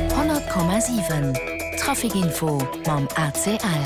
100,7 Trafic Info mam ACL.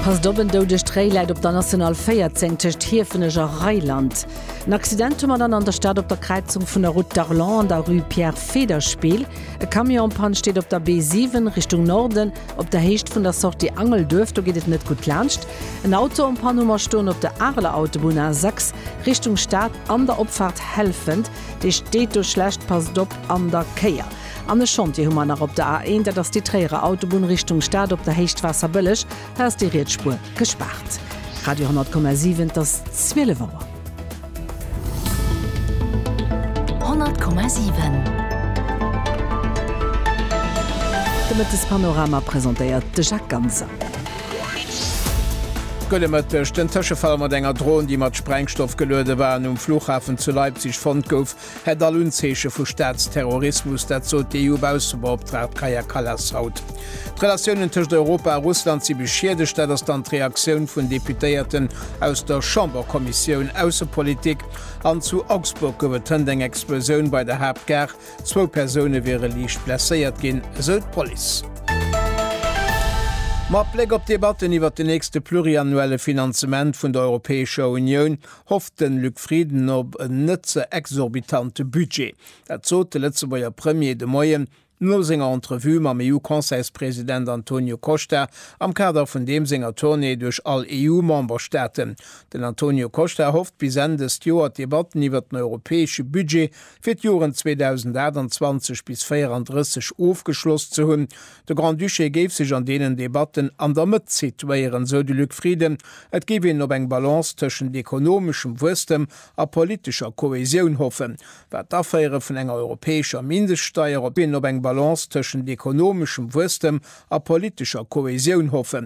Passt op, en doudegt Tréi läit op der National 14 tëscht Hiefenech a Reyland. En Accident hu mer dann an der Stad op der Kräizung vun der Route d'Arlon an der Rue Pierre Federspiel. E Camion en Panne steet op der B7 Richtung Norden, op der Héicht vun der Sortie Angelduerf, do geet et net gutt laanscht. En Auto en Panne hu mer stoen op der Areler Autobunn A6 Richtung Stad an der Opfaart Helfent. Dee steet do schlecht, passt op an der Kéier. An e Chantier hu mer nach op der A1, dat ass déi Tréierer Autobunn Richtung Stad op der Héicht Waasserbëlleg, hei ass déi riets Spuer gespaart. Radio 10,7 't ass 12 Auer. 10,7 De Mëttespanorama presentéiert de Jacques Ganser. Gudde Mëtteg. Den Tëschefall mat enger Dron, déi mat Sprengstoff geluede war an um Flughafen zu Leipzig fonnt gouf, hätt all Unzeeche vu Staatsterrorismus. Dat sot déi EU-Baussebeoptraagt Kaja Kallas haut. D'Relatiounen tëscht Europa a Russland si beschiedegt, dat ass dann d'Reaktioun vun Deputéierten aus der Chamberkommissioun Aussepolitik. An zu Augsburg gouf et hënt eng Explosioun bei der Haaptgare. Zwou Persoune wiere liicht blesséiert ginn, esou d'Police. Mat Bléck op d'Debatten iwwert de nächste pluriannuelle Finanzement vun der Europäescher Unioun hofft de Luc Frieden op en net ze exorbitante Budget. Dat sot de Lëtzebuerger Premier de Moien no senger Entrevue mam EU-Conseilspresident Antonio Costa am Kader vun deem senger Tournée duerch all EU-Memberstaaten. Den Antonio Costa hofft bis Enn dëst Joer d'Debatten iwwert den europäesche Budget fir d'Joren 2028 bis 34 ofgeschloss ze hunn. De Grand-Duché géif sech an deenen Debatten an der Mëtt situéieren, sou de Luc Frieden. Et géif een op eng Balance tëschent ekonomeschem Wuesstem a politescher Kohäsioun hoffen, wat d'Aféiere vun enger europäescher Mindeststeier op een op eng Balance tëschent ekonomeschem Wuesstem a politescher Kohäsioun hoffen.